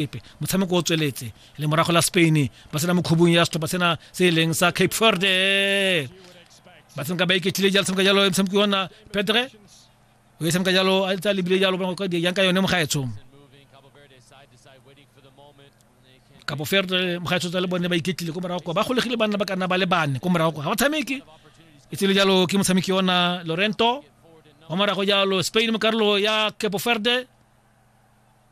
epe motshameko o tsweletse le morago la spain ba sena mo khubung ya setlhopha sena se e leng sa cape verde ba tshameka ba iketlile jalo tshameka jalo e motshameko yona petre o e tshameka jalo a tsa lebile jalo bona go yang ka yone mogaetsho kapo ferde mogaetsho tsa le bone ba iketlile ko morago ba golegile banna ba kana ba le bane ko morago ga ba tshameke e tsile jalo ke motshameki yona lorento wa morago jalo spain mo karolo ya capo ferde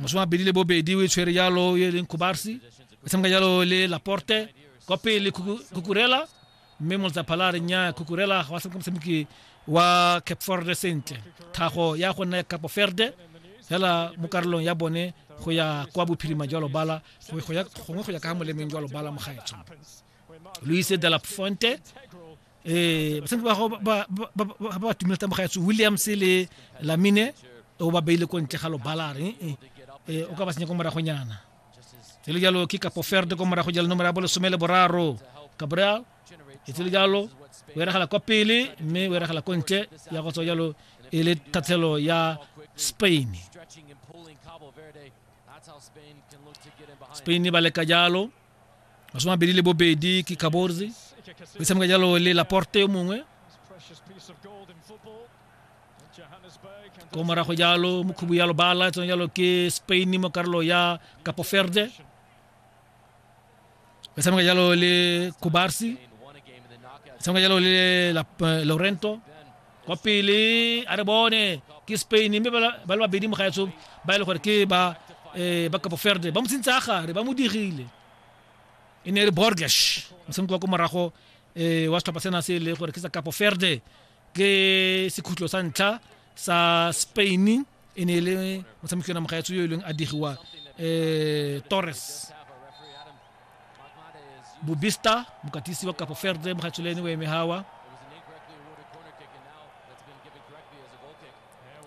masome mabedi le bobedi o e tshwere jalo e leng kubarsi e tshameka jalo le laporte kwa pele kukurela mme moletsapha la re nya kukurela ga wa tshameka motshameki wa cape forde sentle thago ya go nna ya capo ferde fela mo karolong ya bone go ya kwa bophirima jwa lobala gongwe go ya ka ga molemeng jwa lobala mogaetsho luise de la fonte eh basadi ba gago ba ba tumile tsa mogaetso williams le lamine o ba beile ko ntle ga lobalare eh, eh, o ka ba senya ko moragonyana tsele jalo ke kapo ferde ko morago jalo nomoro ya bo lesome le boraro gabriel e tsele jalo o eragala kwa pele mme o eragala ko ntle ya go tswa jalo e le thathelo ya spain spain ba leka jalo masome mabedi le bobedi ke kaborzi o tshameka jalo le laporte yo mongwe ko morago jalo mokhubu ya lobala tsone jalo ke spain mo karolo ya capo verde o tshameka jalo le kubarsi o tshameka jalo le laurento kwa pele a re bone ke spain mme ba le babedi mogaetsho ba e le gore ke ba um ba kapo ferde ba mo tsentse a gare ba mo digile e ne e re borges motshameko wa ko morago um wa setlhopha sena se e le gore ke sa kapo ferde ke sekhutlo sa ntlha sa spain e ne e le motshameki yona mogaetso yo e leng a digiwa um torres bobista mokatisi wa kapo ferde mogaetso le ene o eme gawa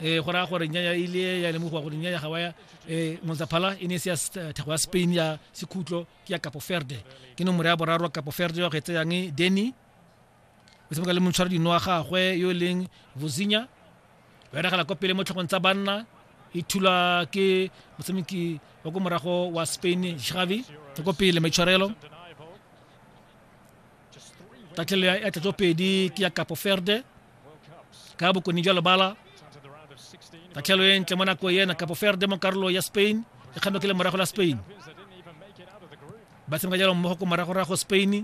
eh go raya gore nya ya ile ya lemogiwa gore nya ya gawa ya eh Monzaphala e ne e se ya eh, thego ya Spain ya sekhutlo ke ya Capo Verde ke nomoro ya boraro Capo Verde ya go etseyang Denny o tshameka le montshwara dino wa gagwe yo e leng vozinya o eragela kwa pele mo tlhogong tsa banna e thulwa ke motshameki wa ko morago wa spain xavi e ko pele maitshwarelo tatlhelo ya tlatso pedi ke ya kapo ferde ka bokone jwa lebala tatlhelo e ntle mo nako ena kapo ferde mo karolo ya spain e kgame ke le morago la spain ba tshameka jalo mmogo ko moragorago spain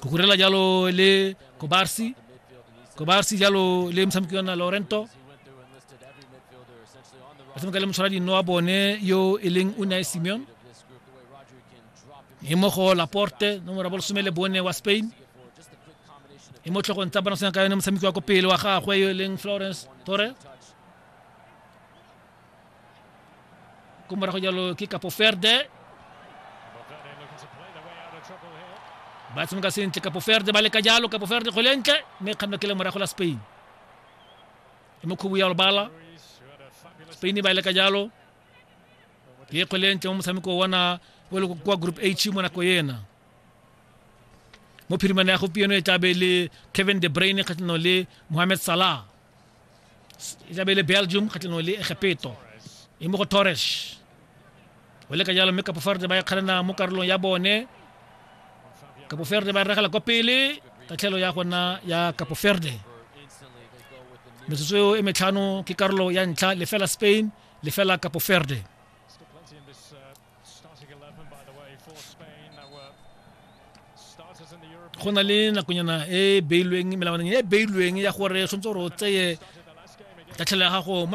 kukurela jalo le kobarsi kobarsi jalo le motshameki wa nna laurento ba tshameka le motshwara dinno wa bone yo e leng o nae simeon e mo go laporte nomoro bolesome le bone wa spain e mo tlhogong tsa bona senya ka yone motshameki wa ko pele wa gagwe yo e leng florence torres kumara go jalo ke kapo ferde ba tshameka sentle kapo ferde ba leka jalo kapo ferde kgwele ntle mme e kganna ke le morago la spain e mo khubu ya lobala spain ba leka jalo ke kgwele ntle mo motshameko wana o le kwa group h mo nako ena mo phirimana ya gompieno e tlabe le kevin de brain kgatlhanong le mohamed salah e tlabe le belgium kgatlhanong le egepeto e mo go torres o le ka jalo mme kapoferde ba e kgalana mo karolong ya bone kapoferde ba regela kwa pele tatlhelo ya gona ya kapoferde metsotso eo e metlhano ke karolo ya ntlha lefela spain lefela kapoferde go na le nakonyana e beilweng melawaneng e beilweng ya gore tshwanetse gore o tseye tatlhelo ya gago